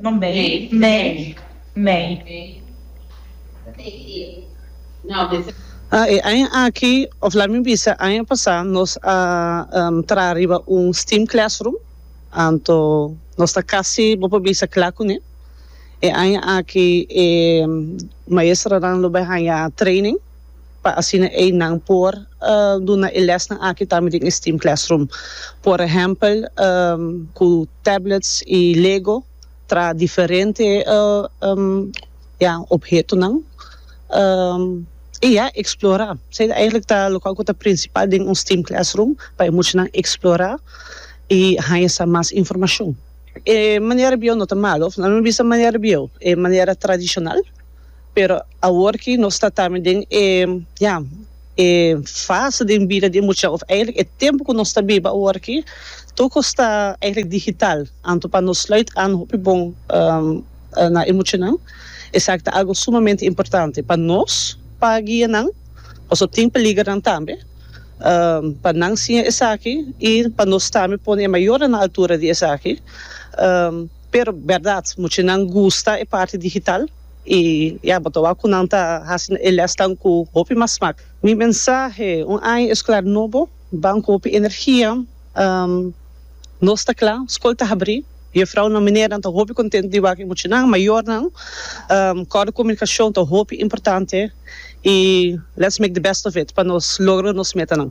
No mei, mei, mei. E aña aki, of laat mi bisa aña pasá, nos a traha riba un steam classroom, anto nos ta kasi, bo por bisa, kla kuné. E aña aki e maestronan lo bai haña training. pa asina ei nan por duna e lesnan aki tambe den e steam classroom. Por ehèmpel ku tablets i lego traha diferente ya ophetonan i ya eksplorá. Se ta eigentlik ta lokal ku ta prinsipal den un steam classroom pa e muchanan eksplorá i haña sa mas informashon. E manera bieu no ta malu. Nan lo bisa manera bieu, e manera tradishonal. Pero awor ki nos ta tambe den e, ya, e fase den bida di e mucha, of eigenlijk e tempu ku nos ta biba awor aki, tur kos ta eigenlijk digital. Anto pa nos sluit an hopi bon na e muchanan, esaki ta algu sumamente importante pa nos, pa guia nan, pasobra tin peligernan tambe, pa nan siña esaki i pa nos tambe pone e mayornan na altura di esaki. Pero berdad mucha nan gusta e parti digital y ya bo ta wak cu nan ta haci e lesnan cu hopi mas smak. Mi mensahe, un aña escolar nobo, ban cu hopi energia. Nos ta cla, scol ta habri, juffrouwnan, meneernan ta hopi content di wak e muchanan, mayornan, cor di comunicacion ta hopi importante y let's make the best of it pa nos logro nos metanan.